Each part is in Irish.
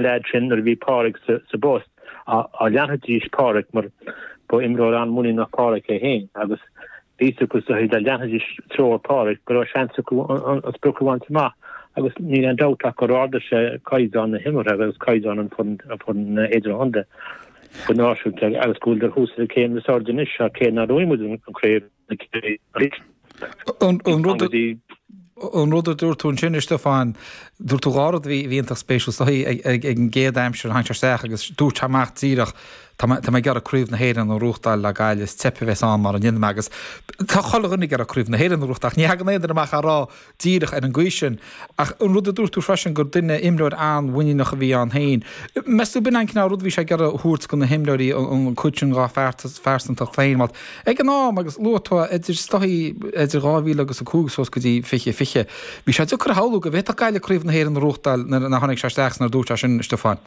leaids sin nuair a bhí Páraic sa bpost, leanfaidís Páraic mar ba imreoir an-muiníneach Páraic é féin agus bhí fhios acu so dá leanfaidís treoir Páraic go raibh seans acu an sprioc a bhaint amach agus níl aon dabht ach gur ardaigh sé caighdeán na himeartha agus caighdeán an fhoireann idirchontae go náisiúnta agus go bhfuil dár thoradh sin céim níos airde anois cé nach bhfuair muid an chraobh. An rud a dúirt tú ansin, a Stiofáin, dúirt tú dhá rud a bhí iontach spéisiúil sa chaoi ag an gcéad aimsir, tháinig sé isteach agus dúirt amach díreach tá mé ag iarraidh Craobh na hÉireann a bhuachtáil le Gaillimh, is teip a bheas ann mara ndéanaim agus tá chuile dhuine ag iarraidh Craobh na hÉireann a bhuachtáil ach ní thagann aon duine amach á rá díreach ar an gcaoi sin. Ach an rud a dúirt tú freisin gur duine, imreoir an-mhuiníneach a bhí ann féin, meas tú b'in an cineál ruda a bhí sé ag iarraidh a thabhairt do na himreoirí, an cuid sin dá phearsantacht féin? Bhuel, ag an am, agus luaigh tú na dátaí idir 2000 agus 5 suas go dtí 20, 20, bhí sé deacair a shamhlú go bhféadfadh Gaillimh Craobh na hÉireann a bhuachtáil nuair a tháinig sé isteach is nuair a dúirt sé sin, a Stiofáin.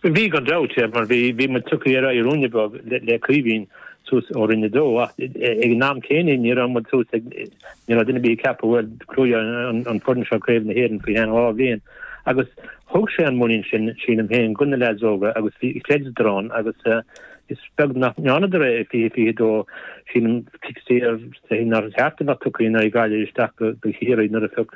Bhí, gan dabht, mar bhí muid tagtha ar aghaidh ruainne beag le Caoimhín suas ó Roinn a Dó, ach ag an am céanna ní raibh muid suas ag, ní raibh duine ar bith ag ceapadh, bhuel, gnóthóidh an fhoireann seo Craobh na hÉireann faoi cheann dhá bhliain agus thug sé an muinín sin, sílim féin, go na leaids óga agus bhí, chreideadar ann agus is beag nach ndearnadar é i 2022, sílim, fixed year, nár cheart a bheith tugtha in aghaidh Gaillimh isteach go Ciarraí nuair a phioc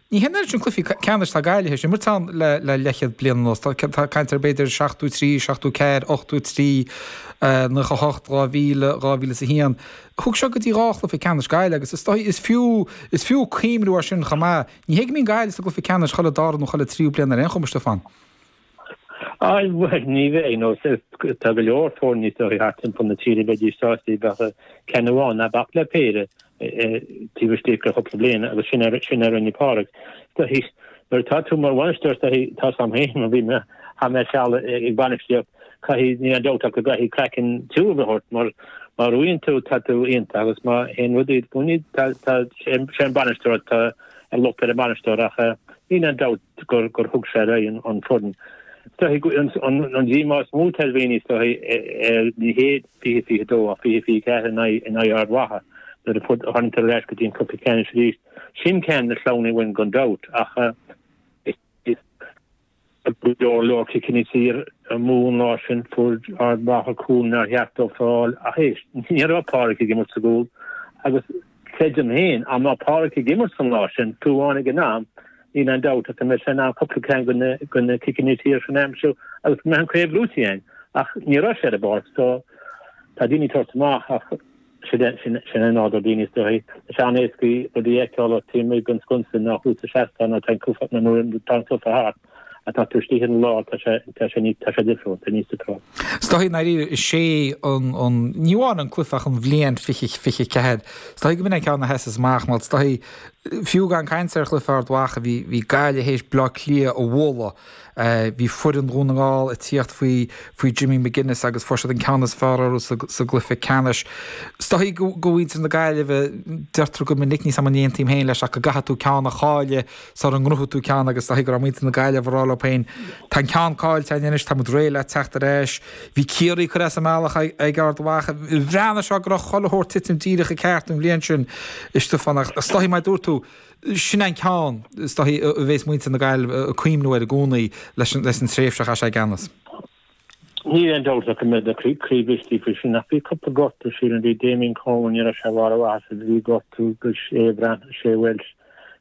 Ní hé an oiread cluichí ceannais, atá Gaillimh ag imirt ann le leathchéad bliain anuas, tá caint ar b'fhéidir seachtó trí, seachtó ceathair, ochtó trí, nócha hocht, dhá mhíle, dhá mhíle is a haon. Thug sé go dtí dhá chluiche ceannais Gaillimh agus is dóigh is fiú is fiú cuimhniú ar sin chomh maith. Ní hé go mbíonn Gaillimh sa gcluiche ceannais chuile dara nó chuile tríú bliain ar aon chuma, Stiofán. Á bhuel, ní hea, nó tá go leor foirne isteach thart timpeall na tíre a bheadh sásta a bheith i gceann amháin, ná bac le péire, taobh istigh de chúpla bliain agus sin é sin a rinne Pádraig. D'aithris, nuair atá tú mar bhainisteoir, d'aithris, tá's a'm féin nuair a bhí mé, chaith mé seal ag bainistíocht, caithfidh, níl aon dabht ach go gcaithfidh craiceann tiubh a bheith ort mar má bhuann tú, tá tú iontach agus má théann rudaí id gcoinne, tá, tá, sé an bainisteoir, tá an locht ar an mbainisteoir ach níl aon dabht, gur thug sé ar aghaidh an foireann. Is dóigh an díomá is mó atá ar dhaoine, is dóigh, ná ní hé, 20, 22, ach 20, 24 in aghaidh Ard Mhacha, nuair a tháinig siad ar ais go dtí an cluiche ceannais arís. Sin ceann de na sleamhnaigh uainn gan dabht ach is go leor leor ciceanna saor amú an lá sin, fuair Ard Mhacha cúl nár cheart dóibh a fháil ach éist, ní raibh Pádraig ag imirt sa gcúl agus, Creidim féin, dá mbeadh Páraic ag imirt an lá sin? Dá mbeadh sé ag an am, níl aon dabht ach go mbeadh sé in ann cúpla ceann de na de na ciceanna saor sin a aimsiú agus go mbeadh an chraobh buaite againn. Ach ní raibh sé ar an bpáirc so tá daoine ag tabhairt amach ach sin sin é nádúr daoine is dóigh. Tá sé níos éasca rudaí a fheiceáil ón taobh amuigh den sconsa ná thuas sa seastán nó ón sofa thart. ach is dóichí an lá tá sé tá sé ní tá sé difriúil tá níos difriúil. Is dóichí nárbh é sé an an ní amháin an cluife, ach an bhliain fiche fiche ceathair is dóichí go mba ceann a sheas amach is dóichí fiú gan caint ar chluife Ard Mhacha bhí bhí Gaillimh a théis Bleá Cliath a bhualadh bhí foireann Dhún na nGall ag tíocht faoi faoi Jimmy McGuinness agus fuair siad an ceann is fearr orthu sa sa gcluife ceannais is dóichí go go muintir na Gaillimhe deirtear go minic níl a fhios agam an n-aontaím féin leis ach go gcaithfidh tú ceann a chailleadh sula ngnóthóidh tú ceann agus is dóichí go rabh muinntir na Gaillimh a rádh leob féin Tá an ceann cáillte againn anois, támuid réidh le teacht ar ais. Bhí Ciarraí curtha as an mbealach ag Ard Mhacha. Bhreathnaigh sé go rabh chuile shórt titim díreach i gceart an bhliain sin, a Stiofáin, ach is dóichí mar dúirt tú, sin é an ceann is dóichí a bhéas muinntir na Gaillimh ag cuimniú air i gcónaí leis an tréimhse a chaith sé i gceannas. Níl aon dabht ach go mbeidh siad ag cuimniú faoi sin ach bhí cupla gortú sílim, bhí Damien Comer, ní rabh sé i mbarr a mhaitheasa agus bhí gortú ag Seán Breathnach, Shane Walsh,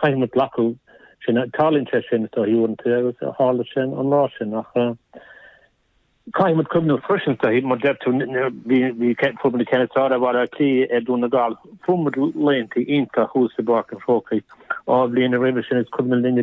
Caithfidh muid glacadh leis sin. Tarlaíonn sé sin, is dóigh, uaireanta, agus tharla sé an lá sin. Ach caithfidh muid cuimhneamh freisin, is dóigh, mar a deir tú, fuair muid an ceann is fearr ar Bhaile Átha Cliath ar Dhún na nGall, fuair muid laethanta iontacha thuas i bPáirc an Chrócaigh dhá bhliain roimhe sin, is cuimhin linn uilig,